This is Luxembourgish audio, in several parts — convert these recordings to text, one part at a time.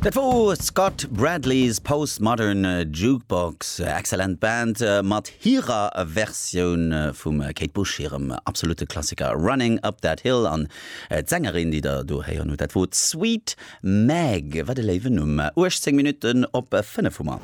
Dat wor Scott Bradlees Postmodern Jukebox, excellent Band mat hirer Versioun vum Kate Bush hirem absolute Klassiker Running Up That Hill. An d'Sängerin, déi der do héieren hutt, dat wor d'Sweet Meg. Wat e léiwen Numm! 18 Minutten op 5 hu mer.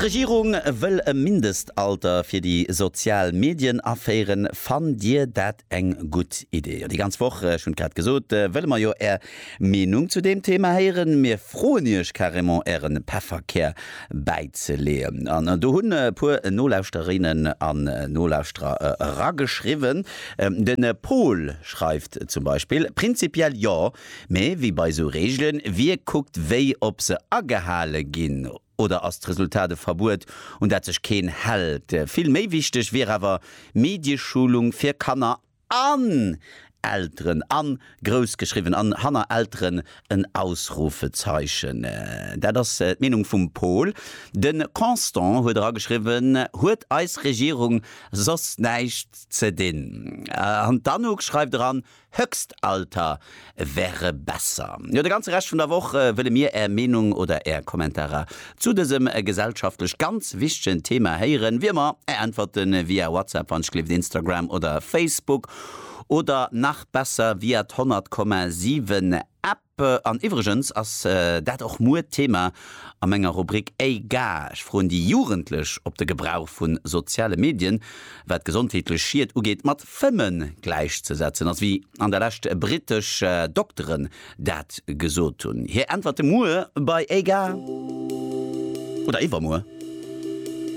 D'Regierung wëll e Mindestalter fir déi sozial Medien aféieren. Fannt Dir dat Eng gutt Idee, jo. Déi ganz Woch, ech hunn et grad gesot, wëlle mer jo Är Meenung zu deem Thema héieren. Mir froen Iech carrément Äre Pefferkär bäizeleeën. An do hunn e puer Nolauschterinnen an Nolauschterer erageschriwwen. De Paul schreift zum Beispill, Prinzipiell jo, mee wéi bei esou Reegelen, wie kuckt wéi, ob se agehale ginn? Oder ass d'Resultat e Verbuet, un dat sech keen hält? Vill méi wichteg wier awer Medieschulung fir Kanner an Elteren, an grouss geschriwwen an hanner Elteren en Ausrufezeichen. Dat ass d'Meenung vum Paul. De Constant huet erageschriwwen, Huet eis Regierung soss näischt ze dinn? An d'Anouk schreift eran, Höchstalter wäre besser. Jo, de ganze Rescht vun der Woch wëlle mir Är Meenung oder Är Kommentarer zu dësem gesellschaftlech ganz wichtegen Thema héieren. Wéi ëmmer Är Äntwerte via WhatsApp, wann ech gleeft, Instagram oder Facebook oder nach besser via d'Honnertkomma siwen App. An iwwregens ass dat och muer d'Thema a menger Rubrik Ey ga, ech froen déi Jugendlech op de Gebrauch vu soziale Medien, wat gesondheetlech Schied ugeet, mat Fëmmen gläichzesetzen ass, wéi an der Lescht britesch Dokteren dat gesot hunn. Hir Äntwerte muer bei Ey ga oder iwwermuer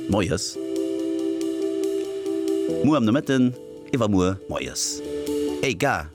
moies, muer am Nomëtten, iwwermuer moies. Ey ga.